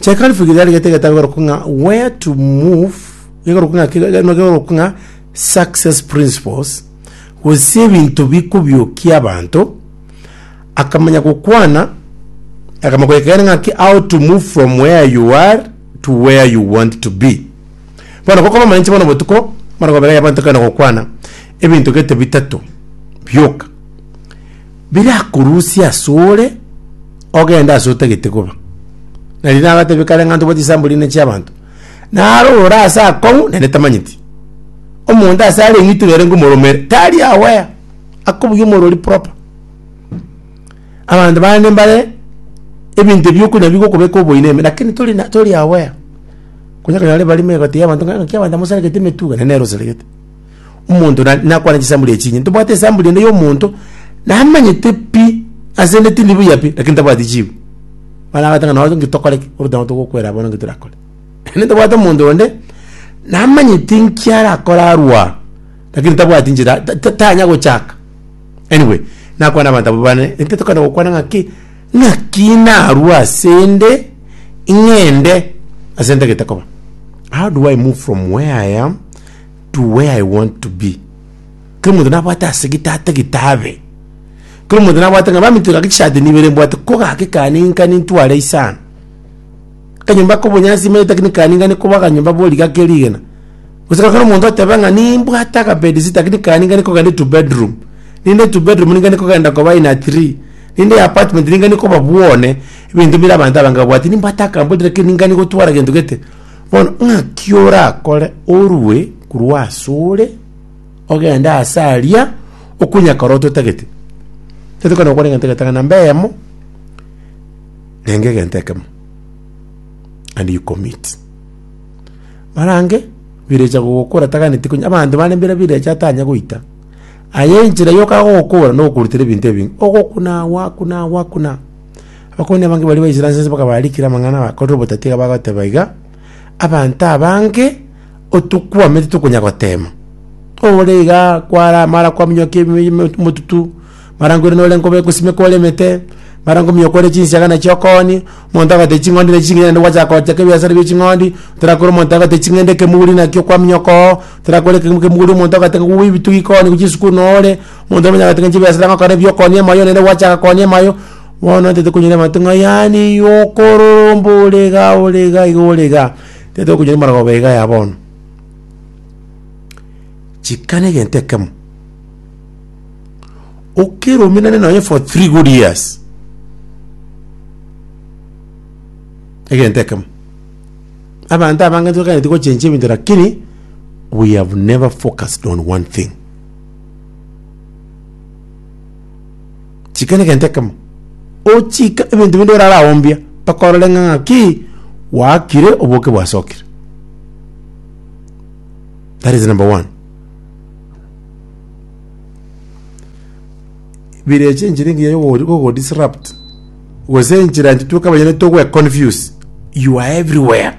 Chekarifu gigari gete getagoruka ng'a where to move gegoruka ng'a ki- ge- no gegoruka ng'a success principles gose ebinto bikobiokia abanto akamanya gokwana akamanya goekeana ng'aki how to move from where you are to where you want to be bono gokoba omorenche bono botuko bono gobega abanto kare gokwana ebinto gete bitato bioka birakorusia asore ogende ase otagete koba. Na riria agatebia kare ng'a ntobwati chisambo rinde chi'abanto, naro ore ase akong'u naende tamanyeti. Omonto ase are ng'itu nere ngomoromere, tari aware, akobugia omorori proper. Abanto bande mbare ebinto ebi okonya bigokobeka oboyia na ime lakini tori na tori aware. Konya ekero nare barimo egati y'abanto ng'a ng'aki abanto amosarekete emetuga, naende nere osaregete. omonto na- nakwana chisambuli echinye ntobwate esambuli ende yomonto namanyete pi ase ende tindi buya pi lakini tabwati chibu bono agateba nonye inki tokore ki oboto nabo togokwera abwo bono inki torakore naende ntobwate omonto onde namanyete inki arakore arwo aa lakini tabwati inchera ta- ta- tanya gochaka anyway nakwana abanto abwo bane ekio tokana gokwana ng'aki ng'aki narwo ase ende ing'ende ase ende gete koba how do i move from where i am. to where I want to be. Kera omonto nabwate ase gete atagete abe. Kera omonto nabwate ng'a baminto gaki chisati nibere mbwate ko gaki kane inka nintware isano. Akanyomba ako obonyansi imanyete lakini kane inga nikoba akanyomba bo riga ake rigena. Gose kera omonto oteba ng'a nimbwate aka bedsitter lakini kane inga nikogenda into bedroom. Rinde into bedroom ninga nikogenda koba in a three. Rinde ya apartment ninga nikoba bwone. Ebinto bire abanto abange babwate nimbwate akabodi lakini ninga nigotwara gento gete. Bono ng'aki orakore orue korwa asore, ogende ase aria okonyakora ototagete. Tetokana gokora egento egetang'ani namba eyemo, renge egento ekemo and you commit. Marange birecha gogokora taganeti konya abanto bande mbira birecha atanya goita, aye enchera yoka agogokora nokorutera ebinto ebinge, ogokuna, gwakuna, gwakuna. Abakong'u abange baria baisire ase ense bakabarikera amang'ana abakorire obotatia bagoteba iga, Abanto abange otokwamete tokonya goteema. Ore iga kwara mara kwaminyokia ebi- eme- omotutu, mara nkoirana ore nkobe gosimeka ore emete, mara nkominyoka ore chinsiaga nachio okoonie, omonto agotebi ching'ondi nachi chingiya naende gwachaka gochaka ebiasara bie ching'ondi, torakora omonto agotebi ching'ende ekemuri nakio kwaminyoka oo, torakora ekemo- kemuri omonto agote kowa ebitugi koonie gochia esukuru noo ore. Omonto omonyabera ng'a chibesa tang'ana gokora ebiokoonia emayo, naende gwachaka koonia emayo, bono ntete konyora abanto ng'a yaani yokororomba ore igaa ore igaa iga ore igaa, tete okonyora emarogooba iga ya bono. Chika na egento ekemo, okeruminane nonya for three good years, egento ekemo, abanto abange ntibakaaneti gochenchia ebinto rakini, we have never focused on one thing. Chika negento ekemo. Ochika ebinto binde oraraombia mpaka orore ng'a ng'aki gwakire oboke bwasokire. That is number one. Bire eche enchera engiya yogo disrupt gose enchera ntitweka abanyene togwe confuse you are everywhere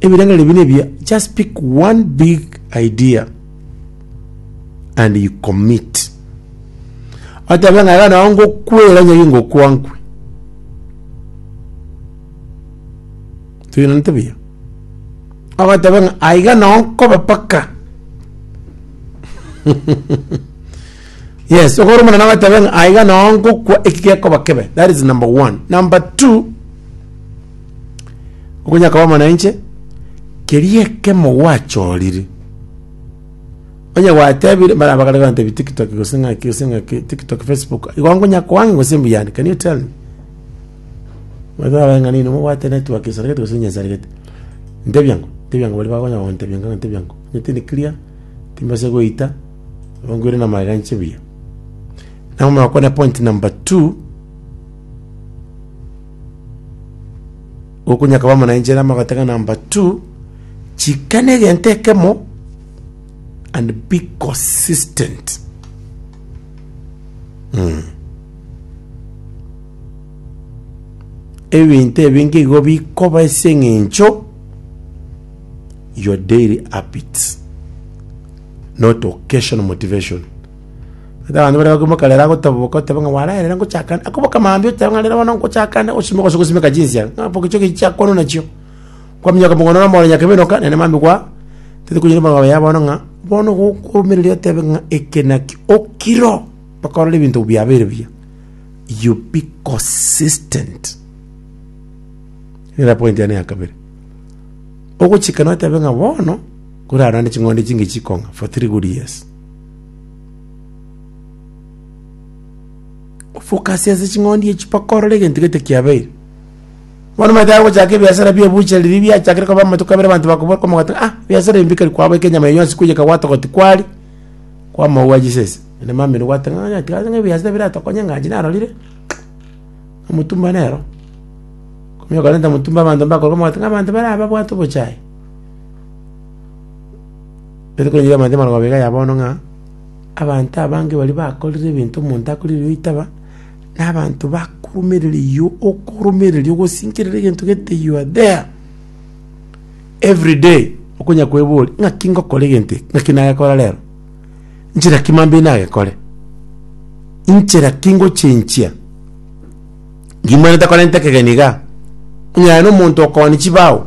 Ebirengererio buna ebi, just pick one big idea and you commit. Otabe ng'a iga nao ngokwera onye ingokwankwe. Tuinanete buya. Ogotabe ng'a aiga nao nkobe paka. yes, ogore omonene ogotabe ng'a aiga nao ngokwa eki gekoba kebe. That is number one. Number two, Okonya koba amo nainche, keria ekemo gwachorire. Onye gwatebire, mbare abakare gotebia tiktok gose ng'aki gose ng'aki, tiktok, facebook, igo nkonya koange gose mbuyande, can you tell me? Omanyete babae ng'a nini mobwate network esaregete gose nyesarigete. Ntebia ng'o, ntebia ng'o baria bakonya gontebia ng'a ntebia ng'o, omanyete in clear, timbasa goita, igo nkoire na magega inche buya. Nabo omanye gokora point number two. Okonya akaba amana enchera amo agataka number two, chikana egento ekemo and be consistent. Mm. Ebinto ebinge igo bikoba ase eng'encho your daily habits not occasional motivation. Gaki abanto baria bakoimoka rero agotaboboka, oteba ng'a ware aye rero ngochaka ande. Akoboka mambia oteba ng'a rero bono ngochaka ande gosimeka gose gosimeka chinsa. Ng'a boka echi oge chiakorwa nachio. Kwaminyoka mogondo na omoro nyakebe enoka, naende mambia kwa tete konyora ebarua yaye bono ng'a bono igo okoumeraria otebe ng'a eke naki okiro okorora ebinto biabeire buya. You be consistent. Nere point yane ya kabere. Ogochika notebe ng'a bono, korara naende ching'ondi chingiya chikong'a for three good years. Focus ase ching'ondi echi mpaka orore egento gete kiabeire. Bono omanyete agochaka ebiasara bia ebuchari riria biachakire koba amatuko abere abanto bakoboka omogati ng'a ah, ebiasara ebi mbikari kwaboete enyama eye yonsi kwiyeka gwatogoti kwari, kwamao gwa chisese. Naende mamino gwateba ng'a onye tiga ebiasara ebi biratokonye ng'a inche narorire, omotumba nero. Okorenta omotumba abanto mbakorokwa omogati ng'a abanto bare aba babwate obochare. Tari konyora amanthe amarabwo abere aya bono ng'a abanto abange baria bakorire ebinto omonto akorire erio oitaba, na abanto bakorumerereyio okoromererio ogosinkerera egento gete you are there everyday okonya kweboria ng'aki ngokora egento eke, ng'aki nagekora rero, nchera ki mambia nagekore, inchera ki ngochenchia ngima ntakorente ekegeni igaa, onye aye na omonto okoonia chibao.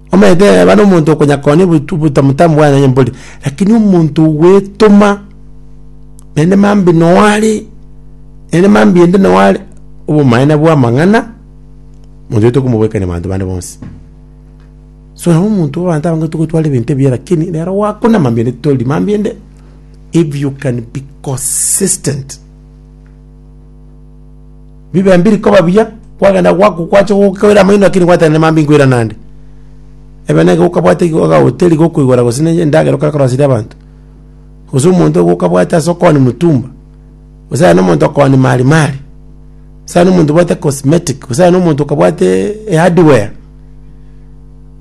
Omanyete eeba nomonto okonyakonya obotu obotamutamu bwane onye mbori, rakini omonto ogwetoma, naende mambia noo are, naende mambia ende noo are, obomaene bwa amang'ana, monto oyo tokomoboekania abanto bande bonsi. So nabo omonto bwa abanto abange togotwara ebinto ebiya rakini rero gwakuna mambia ende tori mambia ende, if you can be consistent. bibe mbiri koba buya, kwagenda gwaku gwacha gokoira amaino lakini gwatenena mambia inkoira nande. Ebe nigo okabwate igo agahoteri gokoigora gose ne endagera okoransire abanto. Gose omonto igo okabwate ase okoonia motumba, gose aye na omonto okoonia mari mari, gose aye na omonto obwate cosmetic, gose aye na omonto okabwate ehardware.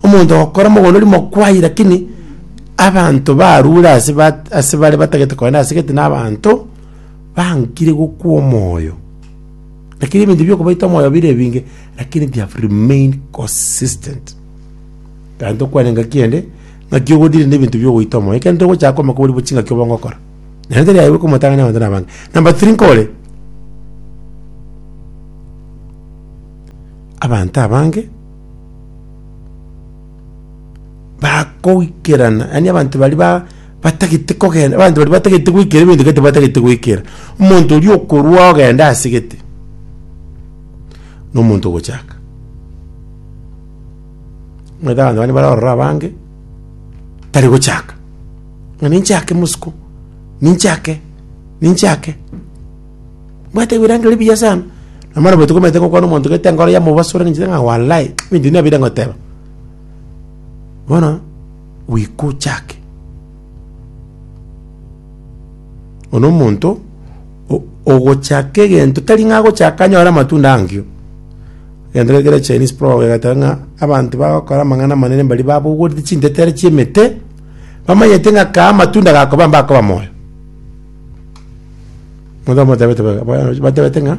Omonto ogokora mogondo oria mokwai lakini abanto barure ase bat ase bare batagete kogenda ase gete na abanto. Bankire gokwa omoyo. Lakini ebinto biokobaita omoyo bire ebinge, lakini they have remained consistent. Kandi tokwane engaki ende, ng'aki ogodire na ebinto biogoita omoyo. Ekero togochaka komaka bori bochi ng'aki obonge okora. Nere tari aye bwe komotang'ani abanto nabange. Number three nkore, abanto abange bakoikerana, yaani abanto baria ba. batagete kogenda, abanto baria batagete goikera ebinto gete batagete goikera. Omonto oria okorwa ogende ase gete, nomonto ogochaka. Omanyete abanto bande bare ororo abange, tari gochaka, ng'a ninchake mosiko, ninchake, ninchake, mbwate ebirango biria biya sana. Na bono baito komanyete gokwana omonto gete enkoro yamobasura ninche ng'a walai, ebinto ebi nabire ngoteba. Bono. Gwikochake Bono omonto ogochaka egento tari ng'a agochaka anyore amatunda ankio. Egento kere kere Chinese proverb egeteba ng'a abanto bagokora amang'ana amanene mbaria babogoreti chintetero chi'emete, bamanyete ng'a kaa amatunda gakoba mbakoba moyo. Moda motebete baka- ba- batebete ng'a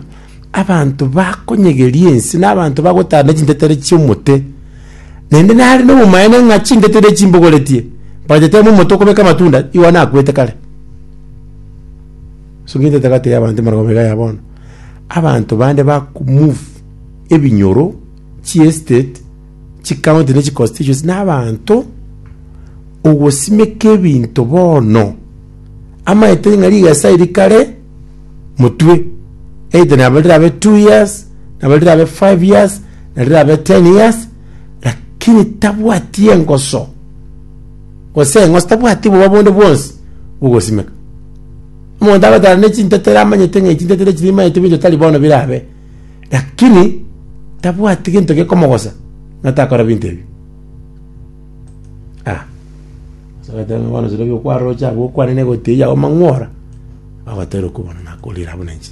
abanto bakonyegeria ense na abanto bagotara ne chintetero chi'omote, naende nare na obomaene ng'a chintetero echi mbogoretie, mbachete amo omote okobeka amatunda, igo nakwete kare. Ase eng'encho etagati y'abanto emara koba iga ya bono, abanto bande bakomove ebinyoro chi'estate. chikaonti ne chiconstituency na abanto ogosimeka ebinto bono amaete ng'a rigesa eri kare motwe either nabo rirabe two years nabo rirabe five years na rirabe ten years lakini tabwati engoso gose eng'osi tabwati oboba bonde bwonsi bogosimeka. Omonto agoteeba ne chintetera amanyete ng'a chintetera echi nimaete binto tari bono birabe. Lakini tabwati gento gekomogosa, na takora binto ebi. Ah. Ase agateba ng'a bono sibabia okwaroche abwo okwane na egoti eyio yao mang'wora, bagotera okobua buna nakorire abwo na inche.